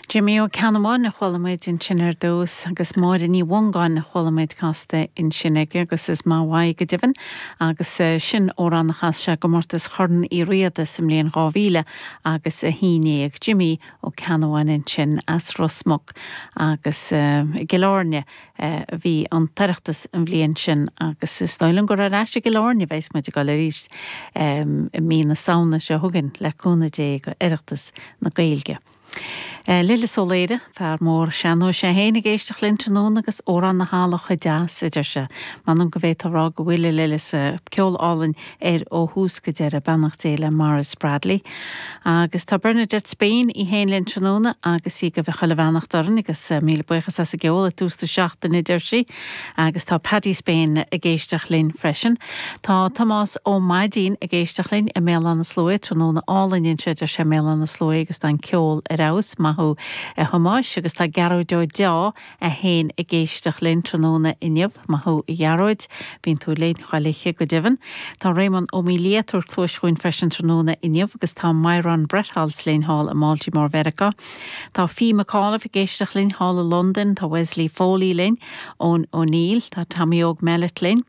Jimí Ó Ceannabháin a chuala muid ansin ar dtús, agus Máire Ní Mhongáin a chuala muid casta ansin aige, agus is ba mhaith go deimhin, agus sin amhrán a chas sé i gcomórtas Chorn Uí Riada sa mbliain dhá mhíle agus a haon déag. Jimí Ó Ceannabháin ansin as Ros Muc agus i gCill Airne. a bhí an tOireachtas an bhliain sin agus is dóigh liom gur ar ais i gCill Airne a bheas muid ag dul arís i mí na Samhna seo chugainn, le cúnamh Dé, go Oireachtas na Gaeilge. Lillis Ó Laoire, fear mór sean-nóis é féin, ag éisteacht linn tráthnóna agus Amhrán na hEala chomh deas, a deir sé. M'anam go bhféadfá a rá go bhfuil, a Lillis, ceol álainn air ó thús go deireadh, beannacht Dé le Maurice Bradley. Agus tá Bernadette Spain í fhéin linn tráthnóna agus í ag guibhe chuile bheannacht orainn agus míle buíochas as an gceol ag tús na seachtaine deir sí. Agus tá Paddy Spain ag éisteacht linn freisin. Tá Tomás Ó Maidín ag éisteacht linn i mBéal Átha na Sluaighe, tráthnóna álainn anseo deir sé i mBéal Átha na Sluaighe agus tá an ceol ar fheabhas, maith thú a Thomáis. Agus tá Gearóid Ó Deá é fhéin ag éisteacht linn tráthnóna inniu, maith thú a Ghearóid. Bíonn tú linn chuile oíche go deimhin. Tá Réamonn Ó Maoildhia ag tabhairt cluais dhúinn freisin tráthnóna inniu agus tá Myron Bretholz linn thall i mBaltimore Mheiriceá. Tá Fee McAuliffe ag éisteacht linn thall i Londain. Tá Wesley Foley linn ón O'Neill. Tá Tommy Óg Mellett linn.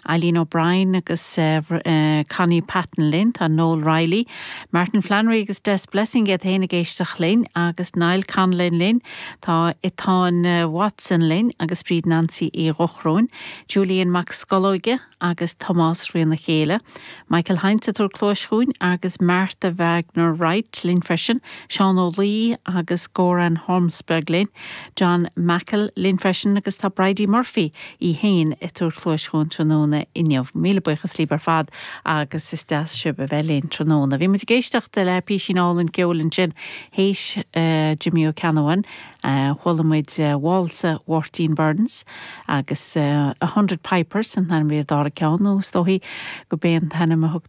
Eileen O'Brien agus Connie Patten linn. Tá Noel Reilly, Martin Flannery agus Des Blessing iad féin ag éisteacht linn, agus Niall Conlon linn. Tá Etáin Watson linn agus Bríd Nansaí Uí Dhochróin, Julian Mac Scolóige agus Tomás Ríona Chéile. Michael Hinds ag tabhairt cluais dhúinn agus Martha Wagner Wright linn freisin. Seán Ó Laoi agus Goran Hormsberg linn. John Meikle linn freisin agus tá Bridie Murphy í féin ag tabhairt cluais dhúinn tráthnóna inniu. Míle buíochas libh ar fad agus is deas sibh a bheith linn tráthnóna. Bhí muid ag éisteacht le písín álainn ceoil ansin théis Jimí Ó Ceannabháin. Chuala muid válsa Mháirtín Byrnes agus A Hundred Pipers, an t-ainm ar an dara ceann, nó is dóichí gurb é an t-ainm a thugtar.